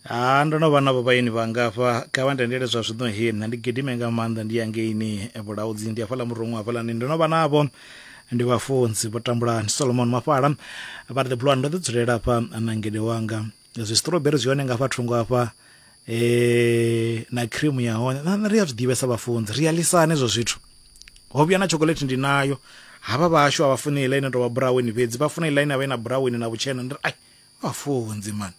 ha ndo no vha navho vhaeni vhangafha kha vha ntendele zwa zwino he nṋe ndi gidime nga maanḓa ndi ya ngeini vhulaudzi ndi hafhaḽa murungu hafhalani ndo no vha navho ndi vhafunzi vho tambula ndi solomon mafhala vha ri the blue ndo ḓi dzulela hafha na ngede wanga zwi strawberry zwi hone nga hafha thungo hafha eh na cream ya hone na na ri a zwi ḓivhesa vhafunzi ri a lisana hezwo zwithu ho vhuya na chocolate ndi nayo havha vhashu a vha funi iḽa ine tovha buraweni fhedzi vha funa iḽa ine avha ina buraweni na vhutshena ndi ri ai Vhafunzi man.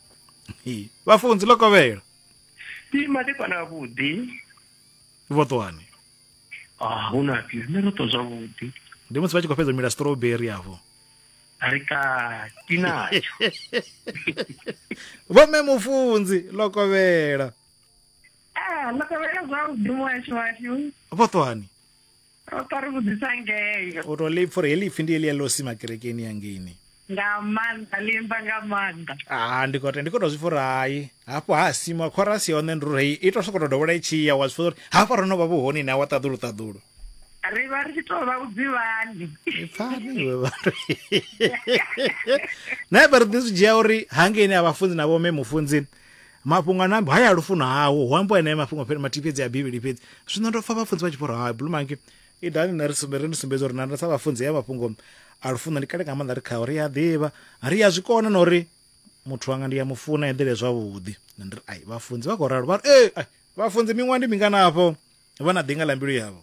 Vhafunzi ḽo kovhela. Ndi madekwana a vhuḓi. Vho ṱwani. Ah, hu na phi. Nṋe ro ṱwa zwavhuḓi. Ndi musi vha tshi khou fhedza mila strawberry afho. Ri ka tinatsho. Vho me mufunzi ḽo kovhela. Ah, ḽo kovhela zwavhuḓi muhasho washu. Vho ṱwani. ro ṱwa ri vhudzisa ngeyo u to lipfa uri heḽi ipfi ndi heḽia ḽo sima kerekeni ya ngeini nga maanḓa limba nga maanḓa a ndi kote ndi koto zwi fora hai hafho ha sima chorus ya hone ndi uri i to sokoto dovhola i tshi ya wa zwi fora uri hafha ro no vha vhuhoni na wa ṱaḓulu ṱaḓulu ri vha ri tshi to vha vhudzivhani pfani iwe vhathu na vha ri ḓi zwi dzhia uri hangeni a vhafunzi na vhome mufunzi mafhungo a nambe haya lufuno hawo hu ambo ene mafhungo fhedzi mathihi fhedzi a bivhili fhedzi zwino ndo pfa vhafunzi vha tshiporo ha blue monkey i dani na ri sumbe ri ni sumbedza uri na sa vhafunzi ya mafhungo a lufuno ndi kale nga maanḓa ri khawo ri a ḓivha ri a zwi kona na uri muthu wanga ndi ya mufuna eḓele zwavhuḓi na ndi ri ai vhafunzi vha khou ralo vha ri ee ai vhafunzi miṅwaha ndi mingana afho vha na ḓinga ḽa mbilu yavho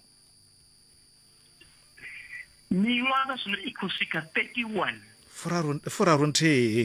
miṅwaha zwino i khou swika 31 furaru furaru nthihi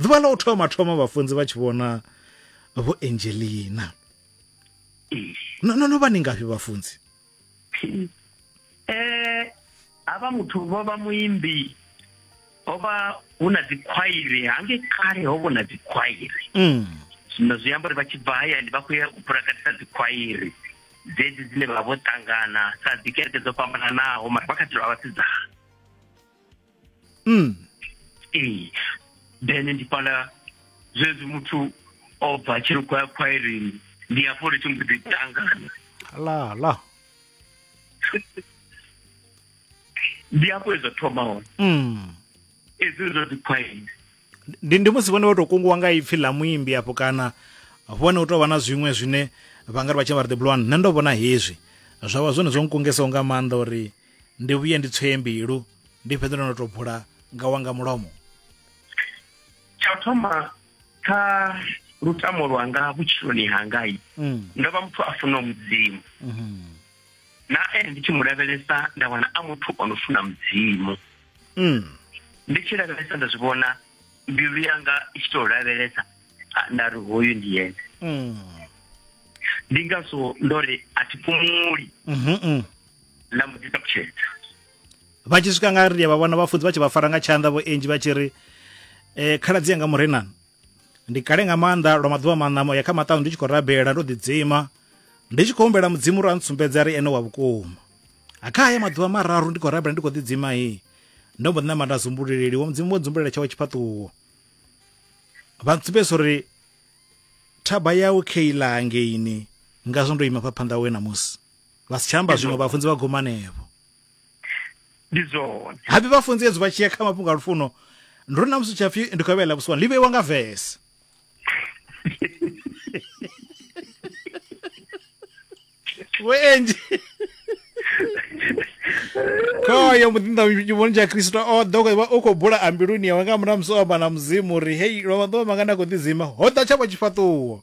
ḓuvha ḽa u thoma thoma vhafunzi vha tshi vhona vho angelina no no vha ni ngafhi vhafunzi um eh, havha muthu vho vha muimbi ho vha hu na dzikhwairi hange kale ho vho na dzikhwairi mm. zwino zwi amba uri vha tshi bva hayani vha khou ya u phulakatisa dzikhwairi dzedzi dzine vha vho ṱangana sa dzikereke dzo fhambananaho mara vha kha ḓi vha vhasidzana mm. ee then ndi fhala zwezwi muthu o bva tshiri khou ya khwairini ndi hafho ri tshi mbo ḓi tangana la la ndi hafho ezwa thoma hone mm. ezwi zwa dzi khwaini ndi ndi musi vhone vha tou kunguwa nga ipfhi ḽa muimbi afho kana vhone u tou vha na zwiṅwe zwine vha nga ri vha tshi vha ri the blue one nṋe ndo vhona hezwi zwa vha zwone zwo nkungesaho nga maanḓa uri ndi vhuye ndi tswee mbilu ndi fhedze ndo no to bula nga wanga mulomo tsha u thoma kha lutamo lwanga vhutshiloni hangai mm. ndo vha muthu a funaho mudzimu mm -hmm. na ene ndi tshi mu lavhelesa nda wana a muthu o no funa mudzimu mm. ndi tshi lavhelesa nda zwi vhona mbilu yanga i tshi tou lavhelesa nda ri hoyu ndi yene mm. ndi ngazwo ndo ri a thi fhumuli mm -hmm. na mbo ḓi ṱalutshedza vha tshi swika nga ri vha vhona vhafunzi vha tshi vha fara nga tshanḓa vho enji vha tshi ri eh khaladzi yanga murenani ndi kale nga maanḓa lwa maḓuvha maṋamo ya kha maṱanu ndi tshi khou rabela ndo ḓidzima ndi tshi khou humbela mudzimu uri a ntsumbedza ri ene wa vhukuma a kha haya maḓuvha mararu ndi khou rabela ndi khou ḓidzima he ndo mbo ḓi namba nda zumbululeli wa mudzimu wo dzumbulela tshawo tshifhaṱuwo vha ntsumbedza uri thaba yawe khe iḽa hangeini ngazwo ndo ima pha phanḓa we na musi vha si tsha amba zwiṅwe vhafunzi vha guma anevho ndi zwone habe vhafunzi ezwi vha tshi ya kha mafhungo a lufuno ndi ri na musi tshapfi ndi khou vhela vhusiwana ḽi vheiwa nga vese vhuenji khoyo muḓinḓa tshivhoni tsha kristo o ḓo vha u khou bula ambiluni yawe nga murahu musi o amba na mudzimu uri hei lwa maḓuvha mangana a khou ḓidzima ho ḓa tshavho tshifhaṱuwo